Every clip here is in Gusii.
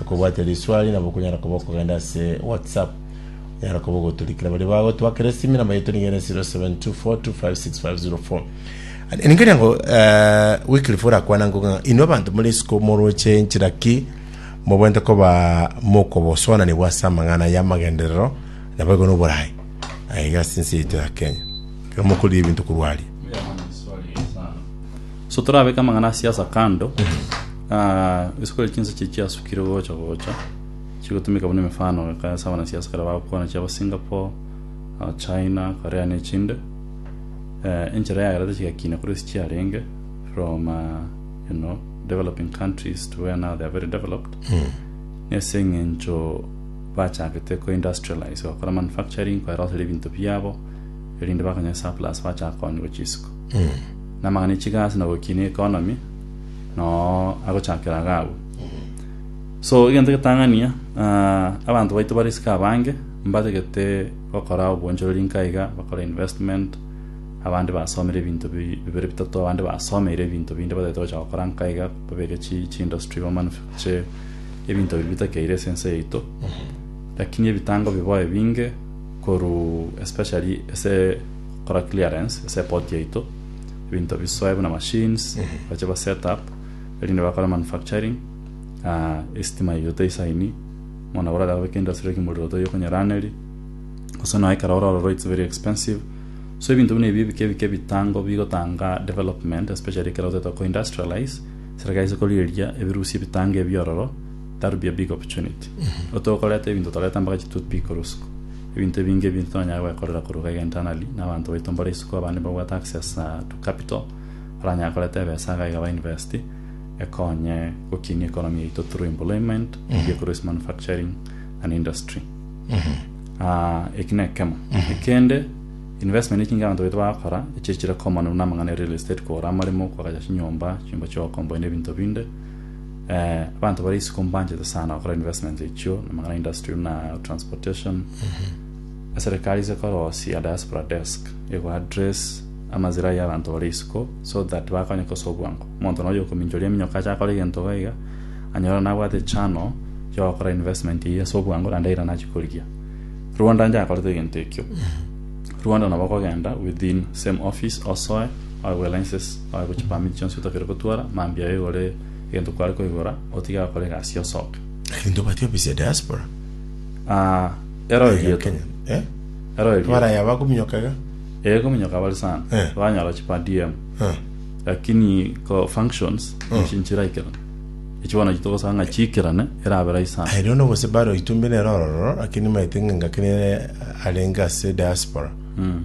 Okobwate riswali nabo okonyara koba okogenda ase WhatsApp. Onyara koba ogoturikera baria bagotwakera esimi, namba yaito niga ere 0724256504. Ande ninkeria ngo eh, Wycliffe orakwana ngo ng'a inwe abanto more isiko moroche enchera ki mobwente koba mokobosoananigwa ase amang'ana y'amagenderero nabo igo noboraai aiga ase ense yaito ya Kenya. Ekero mokoriria ebinto korwa aria. So torabeke amang'ana a siasa kando, ah, isiko ria chinsa chie chiasukire gocha gocha chigotumika buna emefano ekaya ase abanasiasa ekero bagokwana chiabo Singapore, ah, China, Korea na echinde. Eh, enchera yagerete chigakina korwa ase chiarenge from ah, you know, developing countries to where now they are very developed. Nese eng'encho bachagete ko industrialize bakora manufacturing koeroseria ebinto biabo erinde bakanya surplus bachaka konyigwa chisiko. namang'ana e chigasi na gokinia economy noo agochakera iga agwo so egento getang'ania ah, abanto baito bare isiko abange mbatagete gokora obwonchorori nka iga bakore investment abande basomire ebinto bi- bibere bitato abande basomeire ebinto binde batagete gocha gokora nka iga babeke chi- chiindustry bamanufacture ebinto biria bitakeire ase ense yaito lakini ebitango bibae binge korwa especially ase Kora clearance ase epoti yaito, ebinto bisoe buna machines bache ba set up erinde bakore manufacturing, estima yaito toisaini, bono abwo orarebe kento ase riroki morero toiyo konyeraneri, gose nonya ekero ororo it's very expensive, so ebinto buna ebi ebike ebike ebitango bigotanga development especially ekero otaete ko industrialize, serikali ase korigereria ebirusia ebitango ebi ororo. That would be a big opportunity. Otokoreta ebinto toreta mpaka chi toothpick korwa isiko. Ebinto ebinge ebinto tonyare gwekorera korwa gaiga internally na abanto baito mbore isiko abande mbabwate access to capital baranyare koreta ebesa gaiga ba invest ekonye gokinia economy yaito through employment eria ekorwa ase manufacturing and industry. Ah, eki na ekemo. Ekende, investment echinge abanto baito bagakora, echi echire common buna amang'ana ya real estate kogora amaremo, kwagacha chinyomba, chinyomba chia okombonia ebinto binde, Abanto bare isiko mbanchete sana gokora investments echio namang'ana industry buna transportation. Eserekari ase ekorosia diaspora desk ego address amazira ya abanto bare isiko so that bakonyeke ase obwango. Omonto nonya okominchoria eminyoko ache akore egento iga iga anyora nabwate channel ya ogokora investment eyio ase obwango naende eira nachie korigia. Rwanda njakorete egento ekio. Rwanda nabo okogenda within same office osoe oegwe license oegwe chipermit chionsi otakeire gotwara mambia aye igore egento kware koigora otige agakora egasi osoke. Lakini tobati ofisi ya diaspora. Ah, ero Iga erieto. Kenya. Eh? Ero erieto. Abaraya bakominyoka iga. Eh, kominyoka bari sana. Eh. Banyora chi per DM. Eh. Lakini ko functions Mm. echi nchiraikera. Echi bono echi togosaba ng'a chiikerane erabe rahisi sana. Aye rero gose baro itumbi nero ororo lakini maete ng'a ngaki nere arenge ase diaspora. Mm.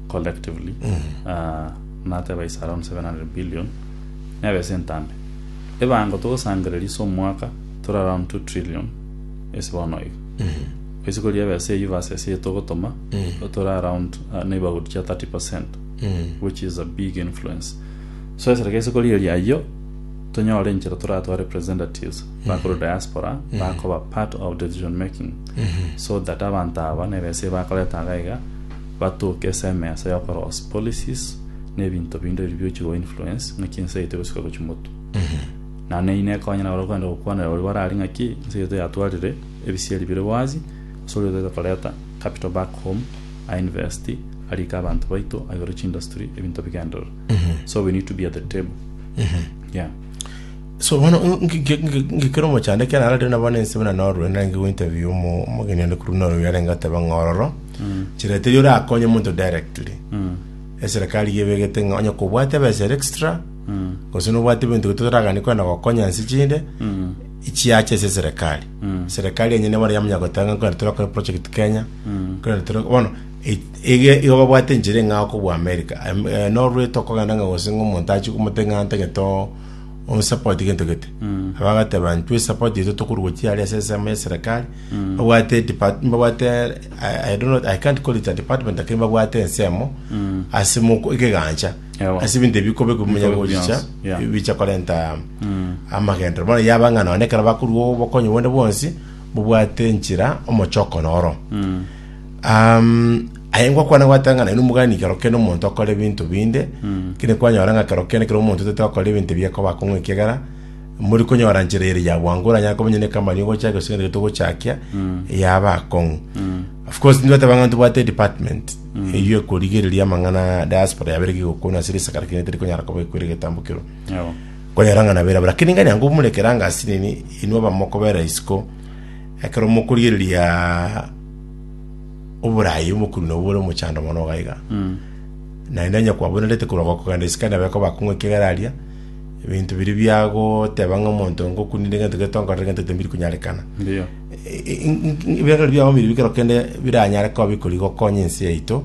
collectively ah, nateba is around 700 billion neba ase entambe ebango togosangereria ase omwaka tore around 2 trillion ase bono iga gose kori ebe ase eywo versus eye togotoma tore around ah, neighborhood chia 30 percent which is a big influence so esere gese kori eri ayio tonyore enchera toratwa representatives bakore diaspora bakoba part of decision making so that abanto aba neba ase bakoreta iga iga Batoke ase emeesa y'okoroosia policies na ebinto binde biri biochire gwa influence ng'aki ense yaito egosika gochia motu. Na na eyio nekonye naro kogenda gokwanera oria bararie ng'aki ense yaito yatwarire ebisieri bire bwazi ase oria otaete koreta capital back home a invest arike abanto baito aigure chindustry ebinto bigenderere. So we need to be at the table. Yeah. So bono ngekera omochando ekiagera nararire nabo nense buna norue, narenge gointerview omo- omogeni onde korwa Norway yarenge goteba ng'a ororo, nchera teri orakonye omonto directly. Eserekari iga ebegete ng'a onye kobwate ebesa ere extra, gose nobwate ebinto ebio totoraganie kwenda gokonya nse chinde, chiacha ase eserekari. Serekari enyene bono yamanya goteba ng'a kwenda torakore project Kenya, kwenda tore- bono e- ege igo babwate enchera eng'ao kobua America. Am- eh, Norway tokogenda ng'a gose ng'a omonto achie komotebia ng'a ntagete oo. Osapote gento gete aba agateba ntwe esapote yetu tokorwa chiari ase ensemo ya serikali babwate depart- babwate I, I don't know, I can't call it a department lakini babwate ensemo ase moko ekegancha Ewa. ase ebinto ebikobe kumenya Bikobe gochicha bionsi, yeah. bicha korenta amagendero bono yaba ng'a nonye ekero bakorwa obokonyi bonde bwonsi bobwate enchera omochoko noro Aye ngokwana gwatang'ana inwe mogani kero kende omonto okore ebinto binde, kende kwanyora ng'a kero kende kero omonto otete okore ebinto ebi akoba akong'u ekiagera muri konyora nchera ere ya bwango oranyare koba onye ne company ogochaka gose egento togochakia yaba akong'u. Of course tindi goteba ng'a ntobwate department eywo ekorigereria amang'ana ya diaspora yaba ere kigokwana ase risaga lakini teri konyara koba ekwire egetambo kerwa. Kwanyora ng'a nabera bo lakini nganya ngomurekera angasi nini inwe abamokobera isiko Ekero mokorigereria oboraai omokuri nobwo ore omochando mono iga iga, naende onye kwabonerete korwa gokogenda isiko nabo ekobakong'u ekiagera aria ebinto biria biagoteba ng'a omonto ngokunire egento gete onkorere egento gete mbiri konyarekana. Ndiyo. Ebiagera biao mbiri bikero kende biranyare koba bikori gokonya ense yaito,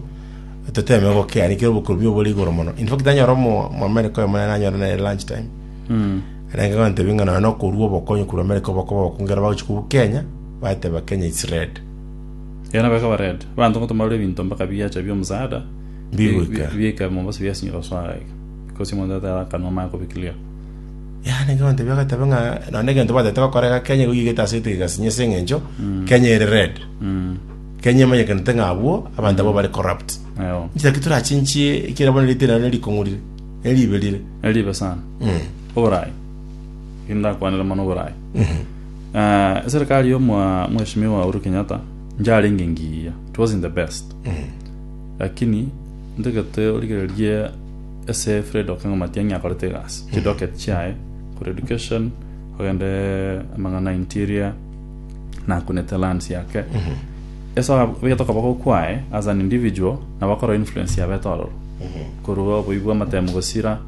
toteeme gokea, nikere obokorombe obore igoro mono. In fact, anyare omo- omoamerika oyo monene anyore nere lunch time, Arenge kotebia ng'a nonya nokorua obokonyi korwa Amerika obokoba obokongera bagochia kobua Kenya, bateba Kenya it's red. Erio nabo ekaba red. Abanto ngoto mbarure ebinto mpaka biacha bia omosaada Mbi goika. bia ika Mombasa biasinyire gosoa iga. Because omonto ata ara akanwa amanye kobi clear. Yaani ekero ntebia agateba ng'a nonya egento batete gokora iga Kenya igo yigete ase etigeka esinye ase eng'encho Kenya ere red. Mm. Kenya emanyekanete ng'a abwo abanto abwo bare corrupt. Eo. Inche naki torachinchie ekiagera bono erite nero nerikong'u rire. Eribe rire. Eribe sana. Oborayi. Ekio ndakwanera mono oborayi. Ah, eserikali yo mwa mheshimiwa Uhuru Kenyatta njarenge ngiya. It wasn't the best. Lakini ntegete origererie ese Fred Okengo Matiang'i akorete egasi. Chidocket chiaye kore education ogende amang'ana interior naku ne talents yake ase abegete okoboko kwaye as an individual nabo akora influence yabete ororo korwa oboi bwa amatemu gosira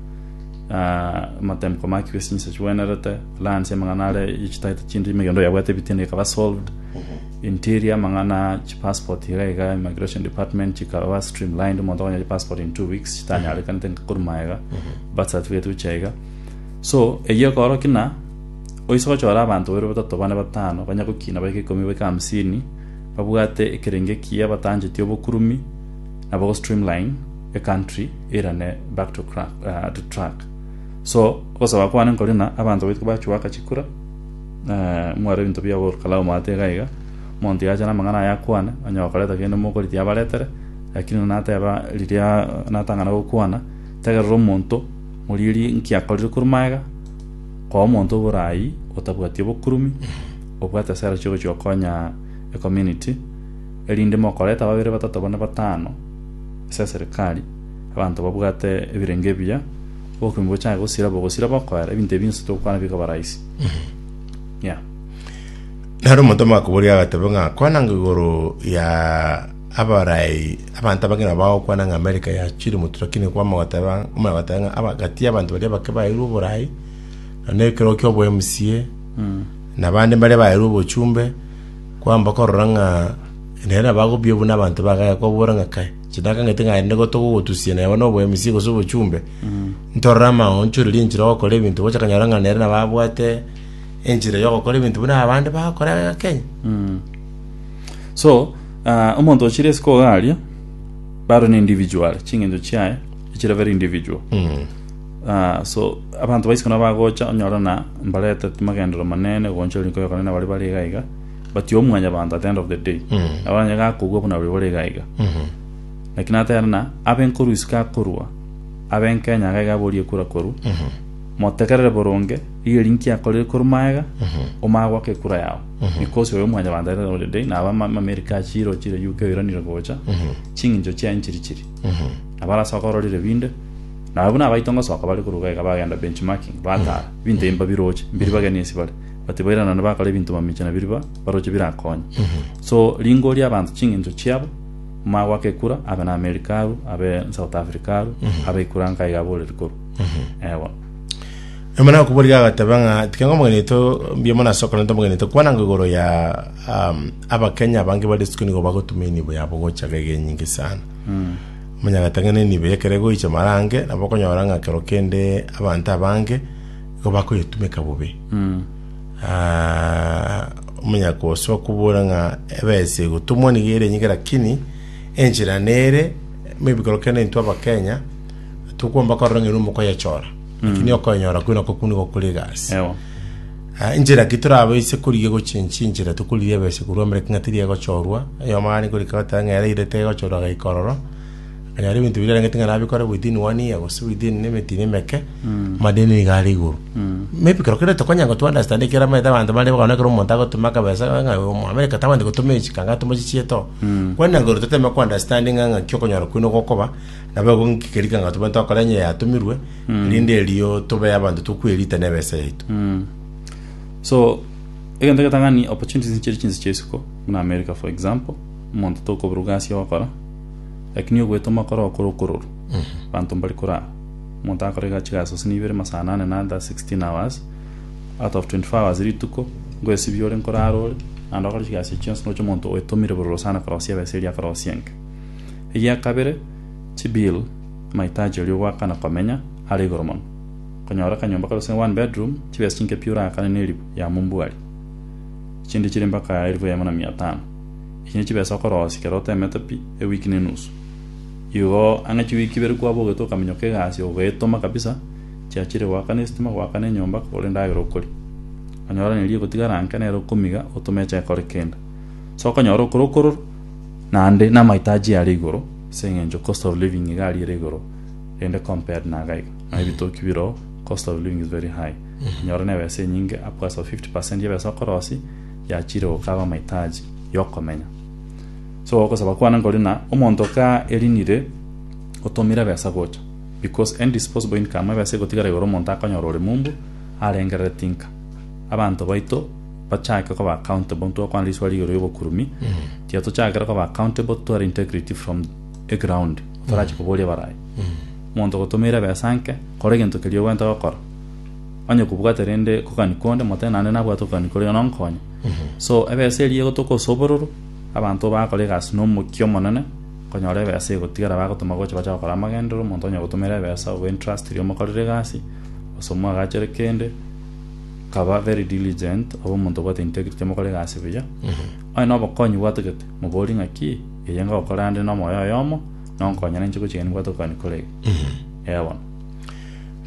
ah, amatemu komaki bwe sinsa chigwenerete lansi amang'ana are ichitaete chindi emegendo yabwate ebitinda ikaba solved interior amang'ana chipassport iga iga immigration department chikaba streamlined omonto akonye passport in two weeks chitanyarekanete korwa maega birth certificate gocha iga so eyio ekoro kina Oise gochora abanto babere batato bane batano, banye gokina baike ikomi baike hamsini, babwate ekerenge ekiya batancheti obokurumi na bo streamline a country erane back to crack, uh, to track so gosaba kwane nkori na abanto baitwe bachuaka chikura uh, mware ebinto bia gor kalau mwate iga iga monto yacha na amang'ana aya akwane onye okoreta kende mokori tiabaretere lakini nateba riria natang'ana gokwana tegerera omonto morieri nkiakorire korwa maega Koa omonto oborai otabwati obokurumi, obwate esera chiogochia gokonya ecommunity, erinde mokoreta babere batato bane batano ase eserikari, abanto babwate ebirengo ebiya, obokurumi bochake gosira bogosira bakoera, ebinto ebi bionsi togokwana bikoba rahisi. Yeah. Naro omonto omogakoboria agateba ng'a kwana ng'a igoro ya Abarai, abanto abange nabo bagokwana ng'a Amerika yachire omotuko, lakini kwama goteba, kwamana goteba ng'a agati y'abanto baria bake baeirwe oborai, na nekerogo ki'obo MCA, na abande mbaria baeirwe obochumbe, kwamba korora ng'a nere nabo agobua buna abanto ba Gaya, kobora ng'a kai, chinakang'ete ng'a aye nigo togogotusia neba na obo MCA gose obochumbe, ntorore amaonchorerie enchera ogokora ebinto, gocha kanyora ng'a nere nabo abwate enchera yogokora ebinto buna abande bagokora iga Kenya. So. Ah, omonto ochire isiko iga aria, baro ne individual, chingencho chiaye, echire very individual. Mm. Ah, so abanto baisiko nabo bagocha onyora na mbarete magendero manene goncha rinko yokonene bari bari iga iga but yo omwanya banto at the end of the day Mm. nabo onye gakogwa buna bari bari iga iga Mhm. lakini atera na abenkoru isiko akorwa abenkenya iga iga aborie kura koru Mhm. motegerere boronge rigeria nki akorire koru maega Mhm. omaya gwaka ekura yao Because oyo omwanyabanto aetete Holy Day na abamamerika a chiro chire UK oiranire gocha, ching'incho chiaye nchiri chiri. Nabo arase okororire binde, na abwo nabaito ngosoka bare korwa iga bagenda benchmarking, batara, ebinto ebi mbabiroche, mbiri bageni ase bare, but bairana bakora ebinto mamiche na biri ba baroche birakonye. So ringoria abanto ching'incho chiabo, omanye goaka ekura, abe na America aru, abe South Africa aru, abe ekura nka iga aboreri korwa. Eeh bono. Nyuma nakoboria agateba ng'a tiga ngomogenete mbiamo na ase okora ntomogenete, kwana ngo igoro ya um, abakenya abange bari isiko nigo bagotuma enibo yabo gocha gege enyinge sana. Monyagete ng'a nenibo yekere goicha marange, nabo okonyora ng'a kero kende abanto abange igo bakoyetumeka bobe. Ah, omonya kosoa kobora ng'a ebesa egotumwa nigo ere enyinge lakini enchera nere maybe kero kende intwe abakenya tokwomba korora ng'a ere omokoyechora Lakini okoenyora kwe nako kune gokora egasi. Ewa. Ah, Enchera ki torabaise korigia gochenchia enchera tokorigia ebese korwa mbere king'a teri egochorwa. Oyomo aare korika goteba ng'a yaraire tegochorwa agaika ororo. Akanyora ebinto birarengeti ng'a nabikore within one year gose within ne emetino emeke. Madeni niga are igoro. Maybe kero kere tokonya go to understand ekero amaete abanto bare bono ekero omonto agotoma akabesa ng'a oyo omo America tabande gotoma echika ng'a atome chichie too. Kwane na igoro toteme ko understand ng'a ng'aki okonyora kwe nogokoba. Nabo ego inki keria kegima tobwate togokora onye yatomirwe, erinde erio tobe abanto tokwerita nebesa yaito. Mm. So, egento getang'ani opportunities nchiri chinse chia isiko, buna America for example, omonto tokoburwa egasi ogokora, lakini ogwetoma okore okore okororwa, abanto mbari korara. Omonto agakora ega- chigasi gose na ibere masaa anane na under 16 hours, out of 24 hours rituko, ngoesibia ore nkorara ore, naende okore chigasi echio chionsi, noroche omonto oetomire bororo sana korosia ebesa eria akorosia enke. Egia kabere, Chibill, amahitaji oria ogoaka na komenya, are igoro mono. Konyora akanyomba kare gose one bedroom, chibesa chinke pi oraakane na elifu yamo mbwari? Chinde chire mpaka elifu eyemo na mia tano. Echi ne chibesa okorosia ekero otemete pi ewiki ne enusu. Igo ang'e chiwiki ibere kwabogete okaminyoka egasi ogoetoma kabisa, chiachire goaka ne estima, goaka ne enyomba, kogora endagera okoria. Onyora neri egotigara anke nere okomiga otome eche ekore kende. Sokonyora okorokorora. Naende namaito achie are igoro, ase engencho cost of living iga ariire igoro, rende compared na iga iga, nonya ebitoki bire oo, cost of living is very high. Onyore na ebesa enyinge, upwards of 50 percent ya ebesa okorosia, yachiire gokaba amaitaji yokomenya. So ogosaba kwane nkori na omonto ka erinire otomire ebesa gocha, because any disposable income ebesa egotigara igoro omonto akonyora ore mumbu arengerere tinka. Abanto baito. bachake koba accountable intwe okwana riswa rigoro y'obokurumi tiga tochakera koba accountable tware integrity from eground torache koboria barayi omonto ogotomeire ebesa nke kora egento keria ogwenta gokora onye kobwate rende kogani konde motebe naende nabwate okogani koria nonkonye so ebesa eria egotoka ase obororo abanto bakora egasi na omokia omonene konyora ebesa egotigara bagotoma gocha bache gokora amagenderero omonto onye ogotomera ebesa obe entrustiri omokorere egasi gose omwagachere kende Kaba very diligent obe omonto obwate integrity mokore egasi buya. Onye na obokonyi bwatogete, moborie ng'aki eye ngokora ande na omoyo oyomo nonkonye na inche gochia gani mbwate okonya korege. Eeh bono.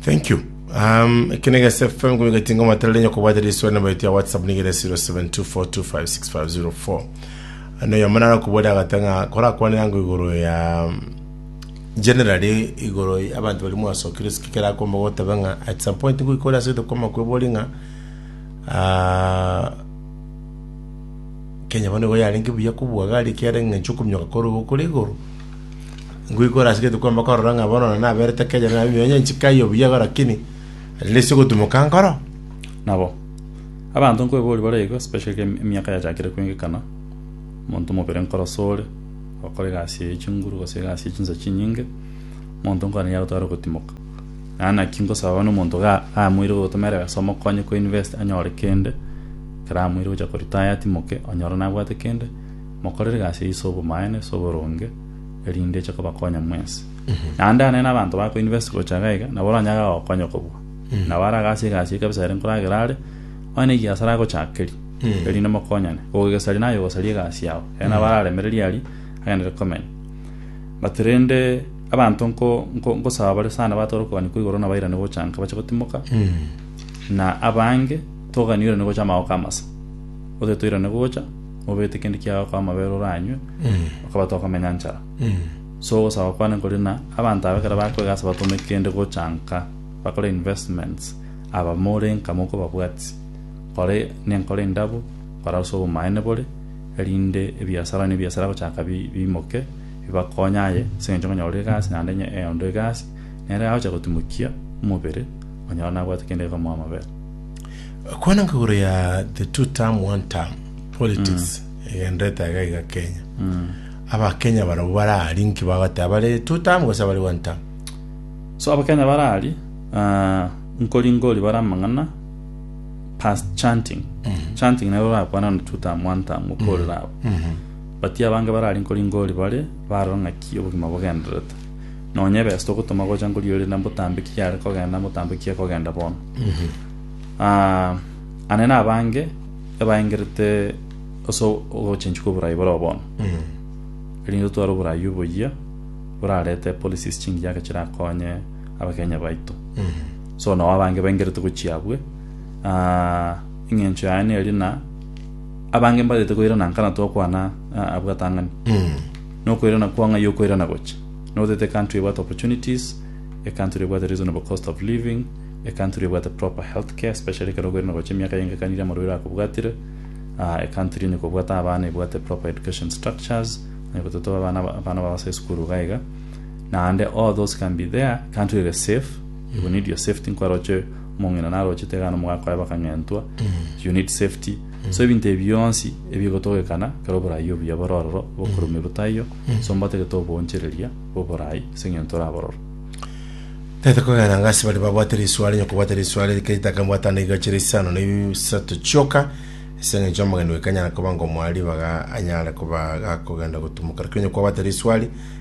Thank you. Um, eke na Gasi FM ngomi gatinga matarere nyoko bwate riswa na baito ya WhatsApp nigere 0724256504. Ano ya manara kubwera agatanga kora kwane yango igoro ya Generally igoro y'abanto baria mwasokire ase kera akomba goteba ng'a at some point ngoika ore ase goita kwama kwebori ng'a ah, Kenya bono nigo yarenge buya kobua gari ekiagera eng'encho okominyoka kore igo kore igoro ngoika ore ase goita kwamba korora ng'a bono na naberete Kenya na nabwo onye nchika aye buya iga lakini at least ogotumoka nkoro Nabo, abanto nkoeboria bare iga especially emiaka yachakire koengekana, omonto mobere nkoro sore, Gokora egasi ye chinguru gose egasi ye chinsa chinyinge, omonto nkwane yagotwara ogotimoka. Naende naki nkosaba bono omonto iga amoire gotoma ere egasi omokonye ko invest anyore kende, ekero amoire gocha ko retire atimoke, onyore nabwate kende, mokorere egasi eyio ase obomaene, ase oboronge, erinde eche kobakonya mwensi. Naende anene abanto bako invest gocha iga iga, nabo oranyare agokonya kobua. Nabo are agase egasi eyio kabisa ere nkoragera are, onye na egiasara agochakeria, erinde mokonyane, ogogesaria naye ogosaria egasi yao. Aye nabo araremereria aria, agenderere komenya. But rende abanto nko- nko- nkosaba bare sana batore okogania kwa igoro nabairane gocha nka bache gotimoka, na abange togani oirane gocha amagoka amasa. Gose toirane gocha, obete kende kiago kwa amabere oranywe, okaba tokomenya nchara. So ogosaba kwane nkore na abanto aba ekero bakwega ase batome kende gocha nka bakore investments, aba more nka mokobabwatia. Kore nenkoro endabo, kora ase obomaene bore, erinde ebiasara nebiasara agochaka biimoke, bibakonye aye, ase engencho ng'a nyore egasi naende enye eonde egasi, nere agocha gotimokia omobere, onyora nabwate kende gekomoa amabera. Kwana nka igoro ya the two term one term politics egenderete aiga iga Kenya. Aba Kenya barabwo bare aria inki bagoteba bare two term gose bare one term? So abakenya bare aria, ah, nkoringa ori bare amang'ana, past chanting chanting nero rakwana no tutamu antamu korera abo but abange barari nkori ngori bare barora ng'aki obogima bogendererete nonye best ogotoma gocha nkori ore na mbotambe ki yare kogenda mbotambe ki ekogenda bono Ah, ane na abange ebaengerete ase ogochenchwa kwa oborai bore bono erinde tware oborai oboyia borarete policies chingiya chirakonye abakenya baito So nao abange baingerete gochia abwe, ah, eng'encho yaye neria, na abange mbarete koirana nka na twakwana ah, abwo gatang'ani. Nokoirana kwao ng'ai okoirana gocha? Notete ecountry ebwate opportunities, ecountry ebwate reasonable cost of living, ecountry ebwate proper healthcare, especially ekero okoirana gocha emiaka yaengekanirie amarwaire akobwatire, ah, ecountry onye kobwate abana ebwate proper education structures, onye gototoba abana abana babo ase esukuru iga iga. Naende all those can be there, ecountry ere safe, You need your safety nkwaroche omong'ina narochete iga nomo gakoe bakang'entwa you need safety so ebinto ebi bionsi ebigotogekana ekero oborai obuya bore ororo bokorumia botaiyo so mbatagete oboonchereria bw'oborai ase eng'encho orabororo Tete kogenda nga ase baria babwate risuare, onye kobwate risuare rike ritake mbwata ande igache risano na isato chioka, ase eng'encho omogeni oyo kanyara koba ngomoa ribaga anyare koba gakogenda gotumoka. Lakini onye kwabwate risuari,